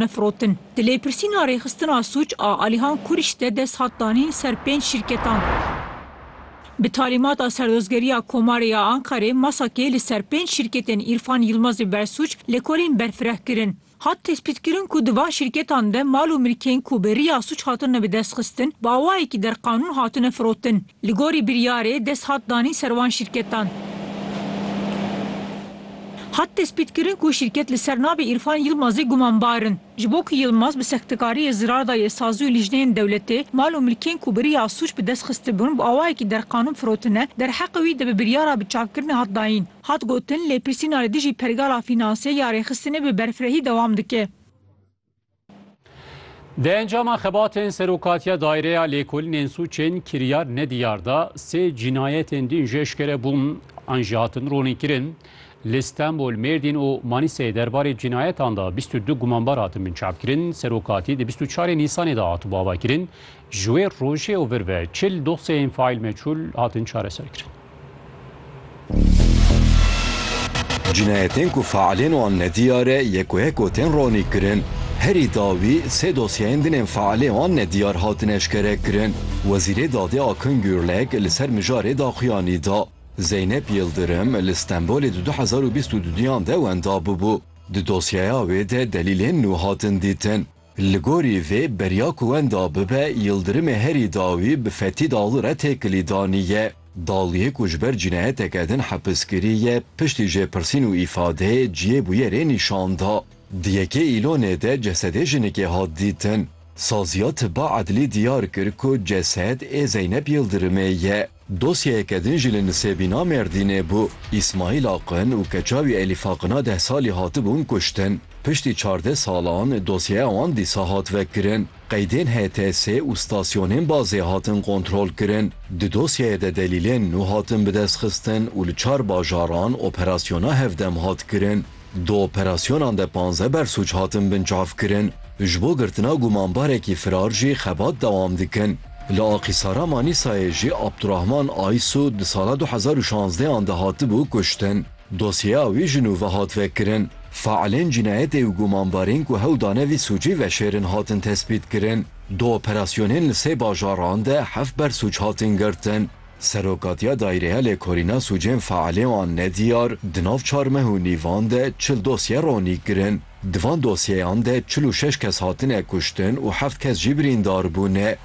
Me firotin. Di lêpirsîna rêxistina sûc a Alihan Kurîş de dest hat danîn ser pênc şîrketan. Bi talîmata Serdozgeriya Komarê ya Ankarê, MASAK'ê li ser pênc şîrketên Îrfan Yilmazê bersûc lêkolîn berfireh kirin. Hat tespîtkirin ku di van şîrketan de mal û mirkên ku bi riya sûc hatine bidestxistin bi awayekî derqanûn hatine firotin. Li gorî biryarê dest hat danîn ser wan şîrketan. Hat tespîtkirin ku şîrket li ser navê Îrfan Yilmazê gumanbar in. Ji bo ku Yilmaz bi sextekariyê zirar dayê sazî û lijneyên dewletê, mal û milkên ku bi riya sûc bi dest xistibûn bi awayekî derqanûn firotine, derheqê wî di bi biryara biçavkirinê hat dayîn. Hat gotin, lêpirsîna li dijî pergala fînansê ya rêxistinê bi berfirehî dewam dike. Di encama xebatên serokatiya daireya lêkolînên sûçên kiryar nediyar da sê cînayetên din ji eşkere bûn an jî hatin ronîkirin. Li Stenbol, Mêrdîn û Manîseyê derbarê cînayetan da bîst û du gumanbar hatin binçavkirin. Serokatî di bîst û çarê Nîsanê da hatibû avakirin. Ji wê rojê û vir ve çil dosyeyên faîl meçûl hatin çareserkirin. Cinayetên ku failên wan ne diyar e yek û yek û tên ranîkirin. Herî dawî sê dosyeyên dinên failê wan ne diyar hatin eşkerekirin. Wezîrê Dadê Akın Gürlek li ser mijarê daxuyanî da. Zeynep Yıldırım li Stenbolê di du hezar û bîst û du duyan de wenda bûbû. Di dosyeya wê de delîlên nû hatin dîtin. Li gorî vê beriya ku wenda bibe Yildirimê herî dawî bi Fetî Daglu re têkilî danî ye. Dagluyê ku ji ber cinayeteke din hepis kirî ye, piştî jêpirsîn û îfadeyê ciyê bûyerê nîşan da. Di yekê Îlonê de cesedê jinikê hat dîtin. Saziya Tiba Edlî diyar kir ku cesed ê Zeynep Yildirimê ye. Dosyeyeke din jî li Nisêbîna Mêrdînê bû. Îsmaîl Aqin û keça wî Elîf Aqina deh salî hatibûn kuştin. Piştî çardeh salan dosyeya wan dîsa hat vekirin. Qeydên HTSê û stasyonên bazê hatin kontrolkirin. Di dosyeyê de delîlên nû hatin bidestxistin û li çar bajaran operasyona hevdem hat kirin. Di operasyonan de panzdeh bersûc hatin binçavkirin. Ji bo girtina gumanbarekî firar jî xebat dewam dikin. Li Aqîsara Manîsayê jî Abdurahman Aysû di sala du hezar û şazdeh an de hatibû kuştin. Dosyeya wî ji nû ve hat vekirin. Faîlên cînayetê û gumanbarên ku hewl dane vî sûcî veşêrin hatin tespîtkirin. Di operasyonên li sê bajaran de heft bersûc hatin girtin. Serokatiya Daîrehelê Korîna Sûcên Faelê wan ne diyar, di nav çar meh û nîvan de çil dosye ronî kirin. Di van dosyeyan de çil û şeş kes hatine kuştin û heft kes jî birîndar bûne.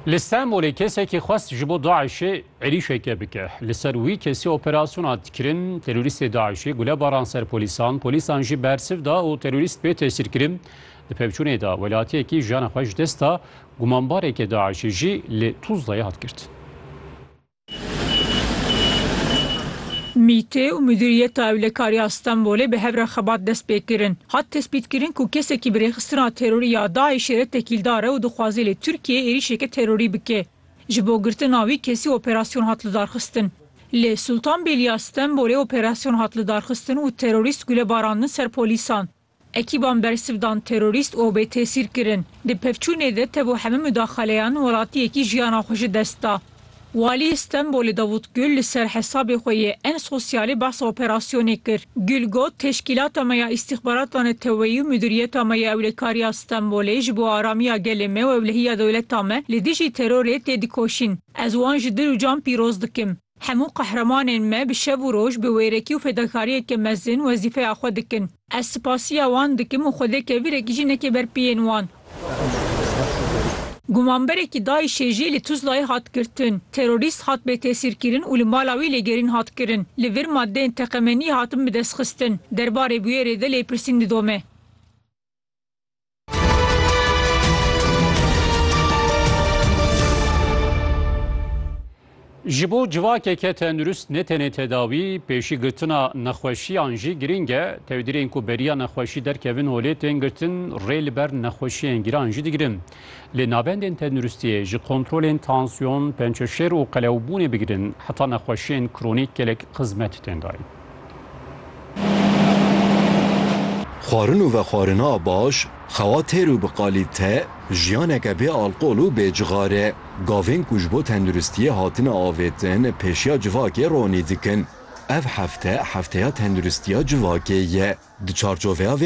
Li Stenbolê kesekî xwest ji bo DAIŞê êrîşeke bike. Li ser wî kesî operasyona hat kirin. Terorîstê DAIŞê gule baran ser polîsan, polîsan jî bersiv da û terorîst bê tesîr kirin. Di pevçûnê de welatiyekî jiyana xwe ji dest da. Gumanbareke DAIŞ'ê jî li Tuzlayê hat girtin. MĪT'ê û Mudîriyeta Ewlekariya Stenbolê bi hev re xebat dest pê kirin. Hat tespîtkirin ku kesekî bi rêxistina terorî ya DAIŞ'ê re tekîldar e û dixwaze li Tirkiyeyê êrîşeke terorî bike. Ji bo girtina wî kesî operasyon hat lidarxistin. Li Sultanbêliya Stenbolê operasyon hat lidarxistin û terorîst gule barandin ser polîsan. Ekîban bersivdan terorîst û bêtesîr kirin. Di pevçûnê de tev û hemû mudaxaleyan welatiyekî jiyana xwe ji dest da. Waliyê Stenbolê Davût Gul li ser hesabê xwe yê en sosyalê behsa operasyonê kir. Gul got, Teşkîlata me ya Îstîxbarata Neteweyî û Mudîriyeta me ya Ewlekariya Stenbolê ji bo aramiya gelê me û ewlehiya dewleta me li dijî terorê tê dikoşîn. Ez wan ji dil û can pîroz dikim. Hemû qehremanên me bi şev û roj bi wêrekî û fedakariyeke mezin wezîfeya xwe dikin. Ez sipasiya wan dikim û xwedê kevirek jî neke ber piyên wan. Gumanberekî DAIŞ'ê jî li Tuzlayê hat girtin. Terorîst hat bêtesîrkirin û li mala wî lêgerîn hat kirin. Li vir madeyên teqemeniyê hatin bidestxistin. Derbarê bûyerê de lêpirsîn didome. Ji bo civakeke tendurist ne tenê tedawî, pêşî girtina nexweşiyan jî girîng e. Tewdirên ku beriya nexweşî derkevin holê tên girtin, rê li ber nexweşiyên giran jî digirin. Lê navendên tenduristiyê ji kontrolên tansiyon, pençeşêr û qelewbûnê bigirin heta nexweşiyên kronîk gelek xizmet tên dayîn. Xwarin û vexwarina baş, xewa têr û bi qalîte, jiyaneke bê alqol û bê cixar e. Gavên ku ji bo tenduristiyê hatine avêtin pêşiya civakê ronî dikin. Ev hefte, hefteya tenduristiya civakê ye. Di çarçoveya vê